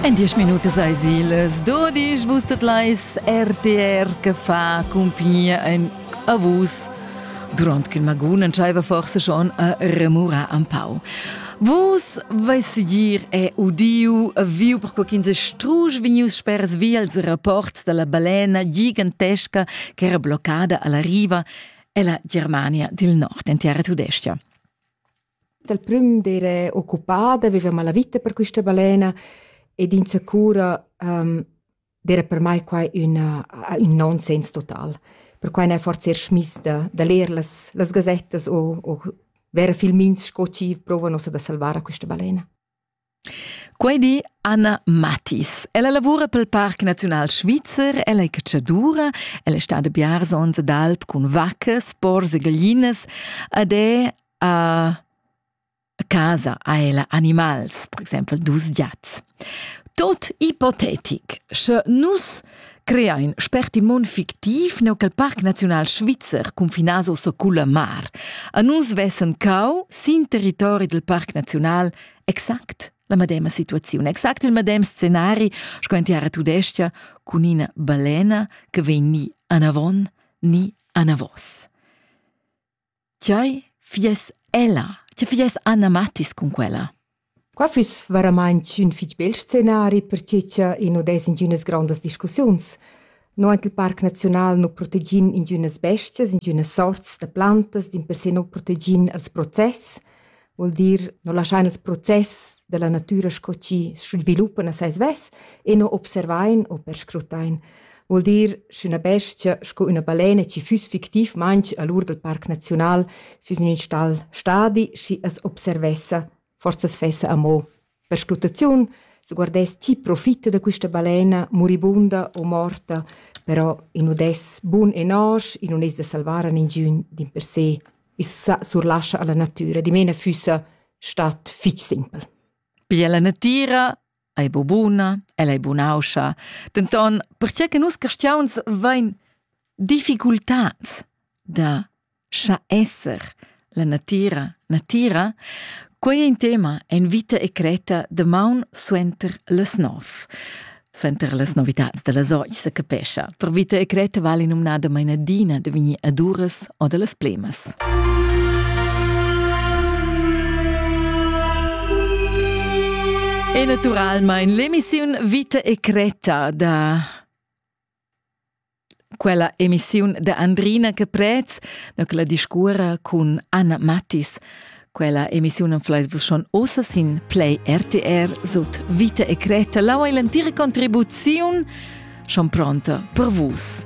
En diesch Minuten sei Sieles, du dich wusstet leis RTR che fa compagnia en Avus. Durant che Magun entscheiva forse schon a remurar am pau. Vus veis gir è udiu viu per quo quinze strusch vinius spers via als rapports dalla balena gigantesca che era bloccada alla riva ella Germania dil nord in terra tudescia. Dal prüm d'eira occupada, vivevamo la vita per quista balena ed insacura ehm d'eira per mai quai üna ün nonsens total. Perquai n'ha forsa eir schmiss da da ler las las gazettas o o vera filmins sco chi prouva nossa da salvar a quista balena. Quei di Anna Mathis. Ella lavura pel Parc Naziunal Svizzer, ella è catschadura, ella è stada biars ons d'alp cun vaccas, pors e gaglinas ed è a casa ha ella animals, per exempel dus giats. Tot ipotetic, sche nus creain spertimon fictiv neu cal Parc Naziunal Svizzer cunfinas o suculla mar. A nus vessen cau sin territori del Parc Naziunal exact la medema situaziun, exact il medem scenari sco in tiara tudestia cun ina balena che vegn ni anavon ni anavos. Tgei fies ella? Tgei fies Anna Mattis cun quella? Qua füss veramaing ün fich bel scenari, perche cha i nu dess ingünas grondas discussiuns. No aint il Parc Naziunal nu protegin ingünas bestias, ingünas sorts da plantas, dimpersè nu protegin els process. Vuol dir, no laschain ils process della natüra sco chi sviluppan a sai svess e no observain o perscrutain. Vuol dir, sch'üna bestia sco üna balena chi füss fictiv manch a l'ur del Parc Naziunal füss in ün stal stadi, schi as observessa, forsa as fessa amo. Perscrutaziun se guardess chi profitta da quista balena muribunda o morta, però in nu dess bun e nosch, in nun es da salvar a ningiün din per se, i's surlascha alla natüra, dimena füssa stat fich simpel. Pia la natüra ei bu buna, ella ei bunauscha, denton perche che nus castiauns vain difficultats da Scha esser, la natira, natira, quei è in tema en vita e creta de maun suenter las nov. Suenter las novitads da las oggi se capescha. Per vita e creta vale numnada mainadina de vegnir ad uras o de las plemas. E naturalmein l'emissiun Vita e Creta da Quella emissiun da Andrina Caprez na la discurra cun Anna Mattis. Quella emissiun flais vus schon ossa sin Play RTR sut Vita e Creta. Lau è l'entira contribuziun schon pronta per vus.